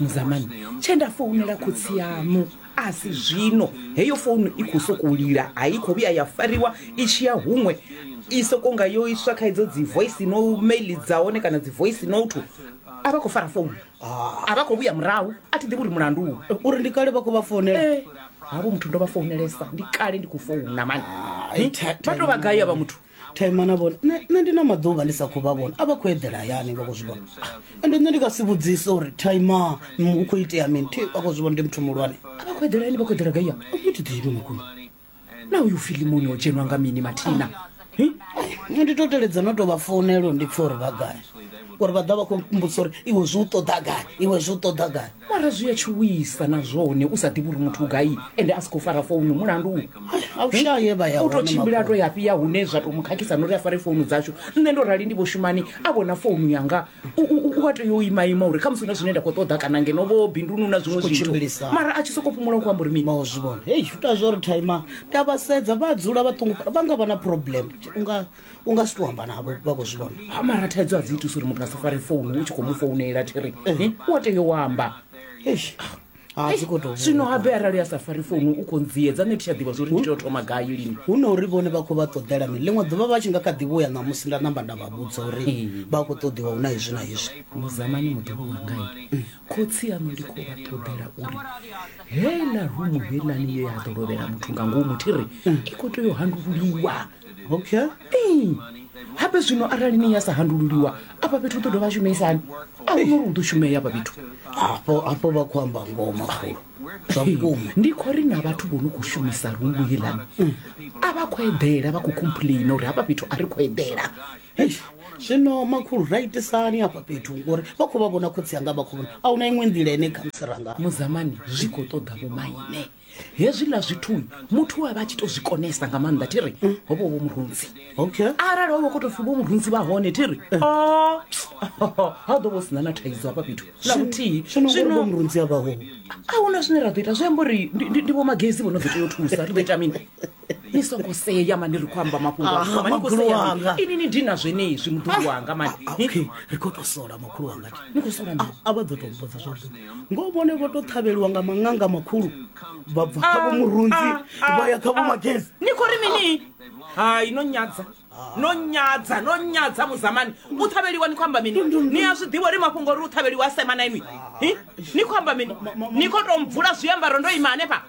muzamani tshe nda founela khotsi yaṋu a si zwino heyo founu i khou sokou lila a i khou vhuya ya fariwa i tshi ya huṅwe i sokou nga yo iswa kha idzo dzi voice no mail dza hone kana dzi voice note a vha khou fara founu a vha khou vhuya murahu a thi ḓivhi uri mulandu u uri ndi kale vha khou vha founela Eh, havho muthu ndo vha founelesa ndi kale ndi khou founa mani Ai, Hmm? tha- vha tou vha gai avha muthu thaimana vhone nṋe ndi na maḓuvha ndi sa khou vha vhona a vha khou eḓela hayani vha khou zwi vhona ende nṋe ndi nga si vhudzise uri thaima u khou itea mini thi vha khou zwi vhona ndi muthu muhulwane a vha khou eḓela yani vha khou eḓela gaiya muthu ḓivhi makuno na uyu filimoni o dzhenwa nga mini mathina nṋe ndi to teledza no to vha founelo ndi pfha uri vha gai uri vha ḓa vha khou mbudzisa uri iwe zwi u ṱoḓa gai iwe zwi u ṱoḓa gai Mara zwi a tshuwisa na zwone u sa ḓivhi uri muthu u gai ende a si khou fara founu mulandu u A u shayi ye vha ya u tou hone tshimbila a makhulu. to ya fhi ya hune zwa tou mu khakhisa na uri a fare founu dzashu nṋe ndo rali ndi vho shumani a vhona founu yanga u- u u- u a tea u ima ima uri khamusi hu na zwine nda khou ṱoḓa kana ngeno vho binduni hu na zwiṅwe Zwi khou zwithu tshimbilisa. mara a tshi sokou fhumula u khou amba uri mini vha u zwi vhona hei zwi ita zwo ri thaima nda vha sedza vha dzula vha ṱungufhala vha nga vha na problem unga u nga si to amba navho vha khou zwi vhona ha mara thaidzo a dzi itusa uri muthu a si fare founu u tshi khou mu founela thiri Eh, u a tea u amba eish ha dzi khou tou zwino habe arali a sa fari founu u khou ndziedza nṋe thi tsha ḓivha zwori ndi tea u thoma gai lini hu na uri vhone vha khou vha ṱoḓela mini ḽiṅwe ḓuvha vha tshi nga kha ḓivho ya ṋamusi nda namba nda vha vhudza uri Mm. vha khou ṱoḓiwa hu na hezwi na hezwi muzamani muḓivho wangai khotsi aṋu ndi khou vha ṱoḓela uri heiḽa rumu heiḽani ye ya ḓo lovhela muthu nga ngomu thi ri i khou tea u handululiwa okay ee hape zwino arali ni ya sa handululiwa afha fhethu u ḓo dovha shumisani a hu nori u ḓo shumea afha fhethu hafho hafho vha khou amba ngoma khulu zwa vhukuma ndi khou ri na vhathu vho no khou shumisa rungu heḽani a vha khou eḓela vha khou complaina uri hafha fhethu a ri khou eḓela Eish, zwino makhulu ra itisani hafha fhethu ngori vha khou vha vhona khotsi anga vha khou vhona a huna iṅwe nḓila ine khamusi ranga muzamani zwi khou ṱoḓa vhomaine hezwiḽa zwithu muthu a vha a tshi to zwi konesa nga maanḓa thi ri ho vha vho murunzi okay arali ho vha khou tou pfi vho murunzi vha hone thi ri o ha ḓo vho sina na thaidzo hafha fhethu na vhuthihi zwino ngori vho zwino murunzi a vhaho a huna zwine ra ḓo ita zwi amba uri ndi- ndi ndi vho magezi vho no ḓo tea u thusa ri ḓo ita mini ni songo sea mani ri khou amba mafhungo a Aha, vhukuma, ni khou makhulu sea mani. wanga. ini ni dina zwenezwi muḓulu wanga mani Ah, Ni- okay ri khou tou sola makhulu wanga ni khou sola mini? a vha ḓo tou mbudza zwavhuḓi ngo vhone vho tou ṱhavheliwa nga maṅanga makhulu vha bva kha vho murunzi Ah, ah, vha ya kha vho ah. magezi ni khou ri mini hai no nyadza no nyadza no nyadza muzamani u ṱhavheliwa ni khou amba mini ni a zwi ḓivha uri mafhungo uri u ṱhavheliwa a sema na inwi Hi? ni khou amba mini ni khou tou mvula zwiambaro ndo ima hanefha